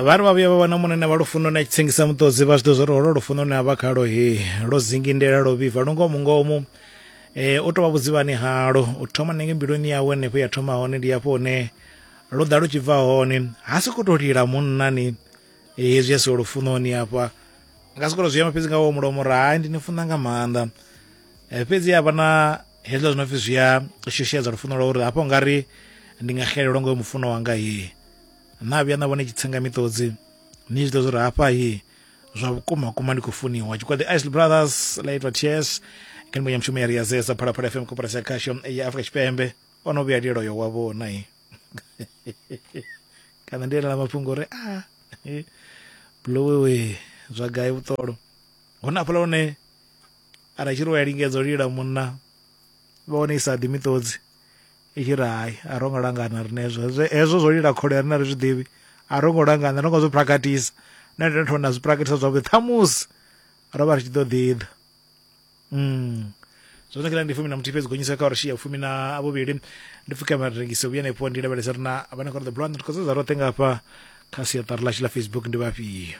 vha ri vha vhuya vha wana munene vha lufuno na tshitsengisa muṱodzi vha zwi ḓo zwa uri holo lufuno ne a vha khalo he lwo zingindela lwo vhifha lu ngomu ngomu um u tou vha vhudzivhani halo u thoma nenge mbiluni yawe henefho ya thoma hone ndi hafho hune lu ḓa lu tshi bva hone ha soko tou lila munnani hezwi a siho lufunoni hafha nga soko to zwi amba fhedzi nga wo mulomo uri hai ndi ni funa nga maanḓa fhedzi havha na hezwiḽa zwi no pfi zwi a shushedza lufuno lwa uri hafho nga ri ndi nga xelelwa ngoyo mufuno wanga hi na vhuya na vhone tshitsenga miṱodzi ni zwi ḓo zwi ri hafha hi zwa vhukuma kuma ndi khou funiwa tshikwadi isl brothers la itwa ts kha ndimo ya mushumo ya riyazesa phalaphala fm koporasi ya khasho ya afrika tshipembe o no vhuya lielo yo wa vhona hi kana ndi elela mafhungo uri a ah, blowewe zwa gai vhuṱolo hone afhaḽa hone Ara tshi ri u a lingedza u lila munna vha wane i sa ḓi miṱodzi i tshi ri hai a ro ngo langana rine hezwo hezwo zwo lila khole rine ri zwi ḓivhi a ro ngo langana ro ngo zwi prakatisa na ndo thona zwi prakatisa zwavhuḓi ṱhamusi ro vha ri tshi ḓo ḓi ḓa mm zwino kila ndi fumi na muthihi fhedzi gonyisa kha uri shiya fumi na vhuvhili ndi pfuka mara rengise vhuya hanefho ndi lavhelesa ri na vhane kha ri ḓo bula nthu khou sedza roṱhe nga hafha kha siaṱari ḽashu ḽa facebook ndi vhafhio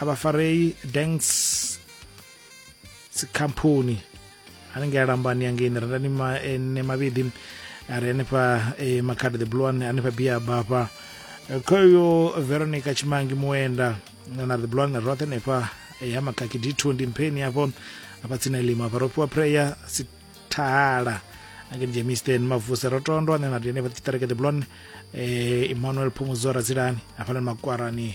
abafarei danks dzikhamphoni hanengei alambani yangeini rendani ene eh, mavhidi ari hanefha eh, makhadi the blue one hanefha bia bafha eh, khoyo veronica chimangi muenda na the blue one roṱhe hanefha ya makaki d2 ndi mpheni hafho hafha tsini elima hafha ro fhiwa prayer sithala angeni jemisten mavusa ro tondwa ane na ri hanefha tshiṱereke the blue one emmanuel phumuzora dzilani hafhanani makwarani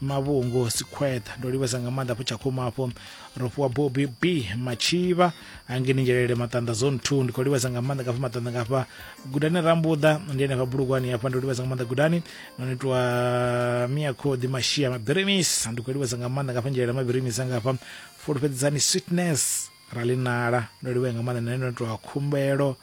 mavhungo sikhweṱha ndo livhesa nga maanḓa afho tshakhuma afho ro fhiwa bobi b matshivha hangeni nzhelele maṱanḓa zone two ndi khou livhesa nga maanḓa ngafha maṱanḓa ngafha gudani rambuḓa ndi henefha bulugwani hafha ndo livhesa nga maanḓa gudani no nitwa mia khoḓi mashia mabirimisa ndi khou livhesa nga maanḓa ngafha nzhelele mabirimisa ngafha fulufhedzisani sweetness ralinala ndo livhea nga maanḓa nane no nitwa khumbelo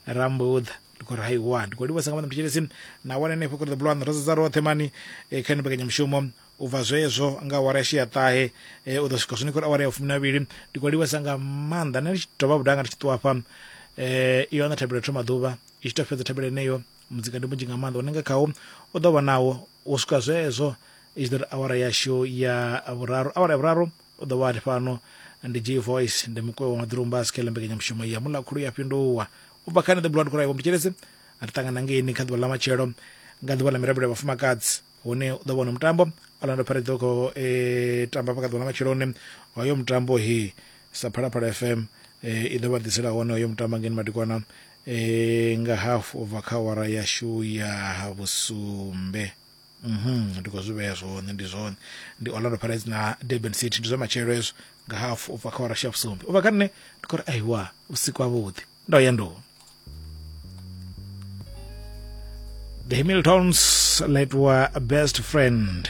rambuḓa ndi khou ri haiwa ndi khou livhuwesa nga maanḓa mthetshelesi na wana henefho kha the blue one rodzo dza roṱhe mani eh, kha ni mbekanyamushumo u bva zwezwo nga awara ya shia ṱahe eh, u ḓo swika zwone khou ri awara ya fumi na vhili ndi khou livhuwesa nga maanḓa nṋe ndi tshi dovha vhuda nga ndi tshi ṱuwa hafha eh, iyo ana thabelo thoma ḓuvha i tshi tou fhedza thabelo yeneyo mudzika ndi munzhi nga maanḓa une nga khawo u ḓo vha nawo u swika zwezwo i tshi ḓo ri awara yashu ya vhuraru awara ya vhuraru u ḓo vha a ri fhano ndi j voice ndi mukoe wa maḓirumba a sikela mbekanyamushumo ya mulakhulu ya fhinduwa u bva kha nṋe the blood cry vhomthetshelese a ri ṱangana ngeini kha ḓuvha ḽa matshelo nga ḓuvha ḽa mirabelo ya vhafumakadzi hune u ḓo vhona mutambo orlando pirates ḓo khou e, tamba hafha kha ḓuvha ḽa matsheloni hoyo mutambo he sa phalaphala fm e, i ḓo vha ḓisela hone hoyo mutambo ngeni madikwana e, nga hafu u bva kha awara yashu ya vhusumbe mhm ndi khou zwi vhea zwone ndi zwone ndi orlando pirates na durban city ndi zwa matshelo hezwo nga hafu ubva kha warashi ya vhusumbi ubva kha nṋe ndi khou ri aiwa vhusiku havhuḓi ndo ya ndo the hamiltons let wa best friend